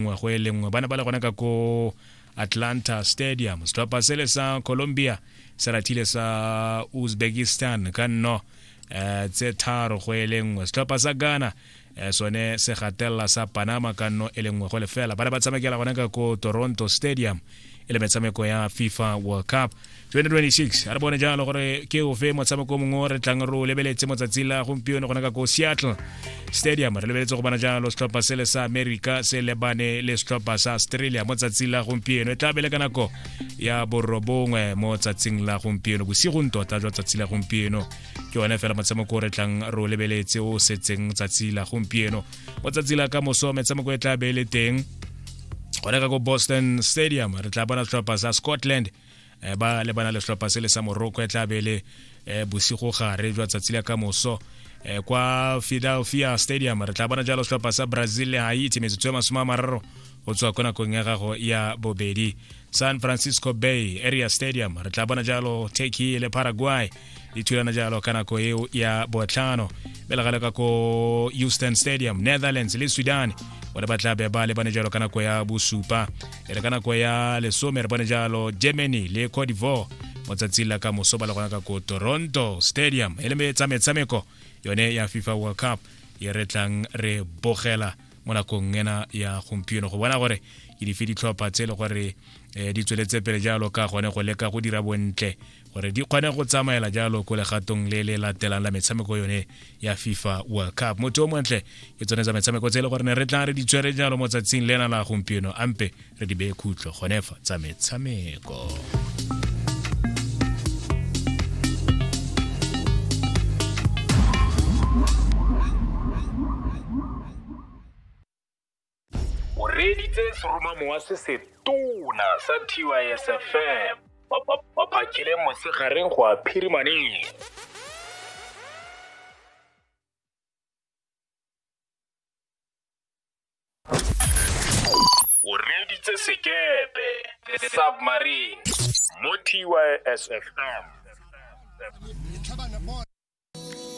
nngwe go e le nngwe ba ne ba le gone ka ko atlanta stadium setlhopha sele sa colombia se rathile sa uzbekistan ka nno um tse tharo go e le nngwe setlhopha sa ghana um sone se gatelela sa panama ka nno e le nngwe go lefela ba ne ba tshamekela gone ka ko toronto stadium e le metshameko ya fifa world cup 2026 a re bone jalo gore ke ofe motshameko mongwe o re tlang re o lebeletse motsatsi la gompieno gona ka ko seattle stadium re lebeletse go bona jalo setlhopha sele sa america se lebane le setlhopha sa australia mo tsatsing la gompieno e tla bele ka nako ya borobongwe mo tsatsing la gompieno bosigong tota jwa tsatsi la gompieno ke one fela motshameko o re tlang re o lebeletse o setseng tsatsi la gompieno mo tsatsi la ka moso metshameko e tla be e le teng gone ka ko boston stadium re tla bona setlhopha sa scotland eh, ba lebana le setlhopha se le sa morocco e tla be e le eh, bosigo gare jwa tsatsi la ka moso eh, kwa philadelphia stadium re tla bona jalo setlhopha sa brazil le haiti metsotso e masome a mararo go tswa ko nakong ya gago ya bobedi san francisco bay area stadium re tla bona jalo turkey le paraguay di thulana jalo ka nako eo ya botlhano be legale ka ko houston stadium netherlands le sudan bone ba tla be ba lebane jalo ka nako ya bosupa e re ka nako ya lesome re bone jalo germany le cote divoire mo tsatsing la ka moso ba le gona ka ko toronto stadium e le metshameko yone ya fifa world cup e re tlang re bogela mo nakong ena ya gompieno go bona gore ke dife ditlhopha tse e le gore um di tsweletse pele jalo ka gone go leka go dira bontle gore di kgone go tsamaela jalo ko legatong le le latelang la metshameko yone ya fifa world cup motho o montle ke tsone tsa metshameko tse e le gore ne re tla re di tswere jalo mo tsatsing lena la gompieno ampe re di beye khutlo gone fa tsa metshameko o reeditse seromamo wa se setona sa tysfm ba phakile mosegareng go a phirimaneng o reeditse sekepe submarine mo tysfm